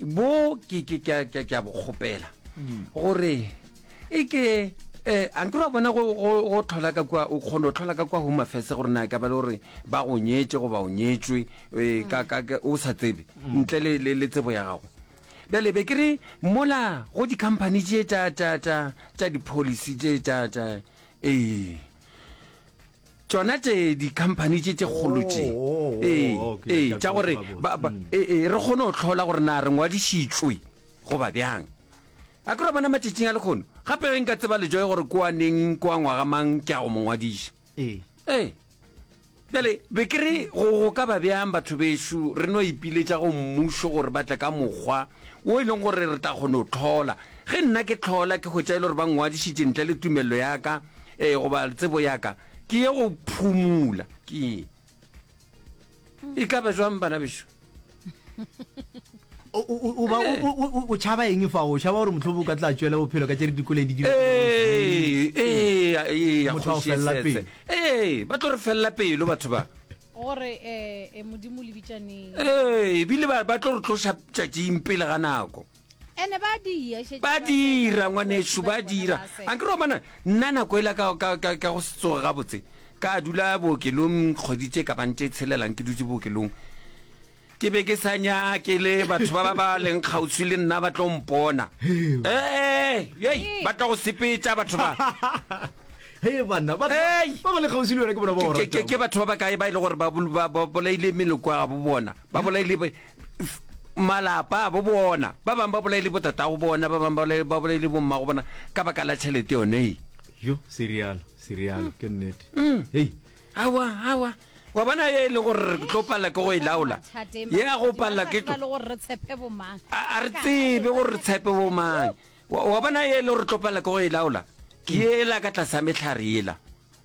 bo ke ke ke ke ke a bokgopela gore e ke eh a nke ra bona go go go tlhola ka kwa o kgone go tlhola ka kwa home affairs gore na ka ba le gore ba go nyetse go ba o nyetswe eh, ka ka ka- o sa tsebe ntle le le le tsebo ya gago bjale be ke re mola go di-company tše tša tša tša tša di-policy tše tša tša ee tšona tše dikhamphani tše tše kgolo tše Oh, ee oh, okay, ee ke a tša gore tseba gabotse. ba- ba- Mm. ee, ee, re kgone go tlhola gore na re ngwadišitšwe goba bjang a ke ra bona matšatšing a lekgono gape ge nka tseba lejoe gore ko a neng ko a ngwaga mang ke a go mo ngwadiša ee ee bjale be ke re go go ka ba bjang batho bešo re no ipiletša go mmušo gore ba tle ka mokgwa o e leng gore re tla kgone go tlhola ge nna ke tlhola ke hwetša e le gore ba ngwadišitše ntle le tumelelo ya ka ee goba tsebo yaka ke ye go phumula ke ye e ka ba jwang bana beso o tšhaba eng fa o tšhaba gore motlhobo o ka tla tswela bophelo ka tše re dikole di ee ba tlo re felela pelo batho ba gore um modimo lebitšaneng ee ebile ba tlo re tloša tšatšing pele ga nako Ene ba di ya šetše ba dira ngwanešu ba dira a ke romana nna nako e la ka ka ka ka go setsoga ga botse ka dula bookelong kgwedi tse ka bang tse tshelelang ke dutse bookelong ke be ke sa nyake le batho ba ba ba leng kgauswi le nna ba tlo mpona ee ei ba tla go sepetša batho ba he banna ba Hey! ba ba le kgauswi le wena ke bona ba o Ke- ke- ke ratang. batho ba ba kae ba e le gore ba bol- ba- ba bolaile meloko ya bo bona ba bolaile ba- malapa abo bona ba bangwe ba bolaile botatago bona ba bangwe ba bolaile bommago bona ka baka la tšhelete yone e yo serialo serialo ke nnete mm. hei awa awa wa bona ye e le gore re tlo palela ke go e laola ye a go palela ke a re tsebe gore re tshepe bomang wa bona ye e le gore re tlo palela ke go e laola ke ela ka tlase ya metlhare ela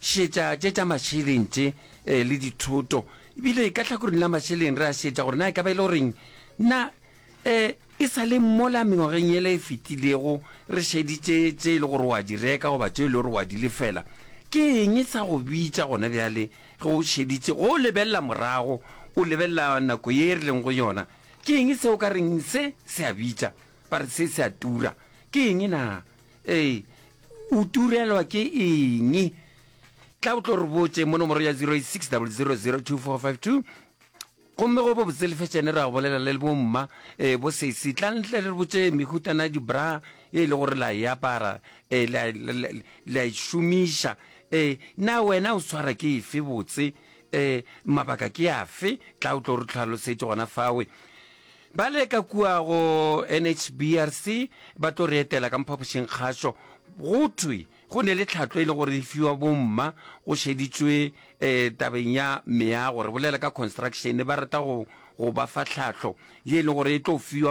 Šetša tše tša mašeleng tše le dithoto. Ebile ka hlakoreng la mašeleng re a šetša gore na e ka ba e le goreng na e sa le mola mengwageng yela e fetilego re šeditše tše e le gore o a di reka goba tše e le gore o a di lefela. Ke eng sa go bitša gona bjale ge o šeditše go lebelela morago, o lebelela nako ye re leng go yona? Ke eng se o ka reng se se a bitša? Ba re se se a tura. Ke eng na? Ee, o turelwa ke eng? Tla o tlo re botse mo nomoro ya 0860002452 gomme go bo botse lefetšene ra go bolela le bomma um bo sesi tla ntle le re botse mehutana dibra e le gore la e apara um la e šomiša um na wena o tshwara ke efe botse um mabaka ke afe tla o tlo re tlhalosetse gona fawe Bale ka kua go NHBRC ba tlo re etela ka mphapošingkgašo. Go thwe go ne le tlhatlo e le gore e fiwa bomma go šeditšwe um tabeng ya meago, re bolela ka construction, ba rata go go ba fa tlhatlo ye e le gore e tlo fiwa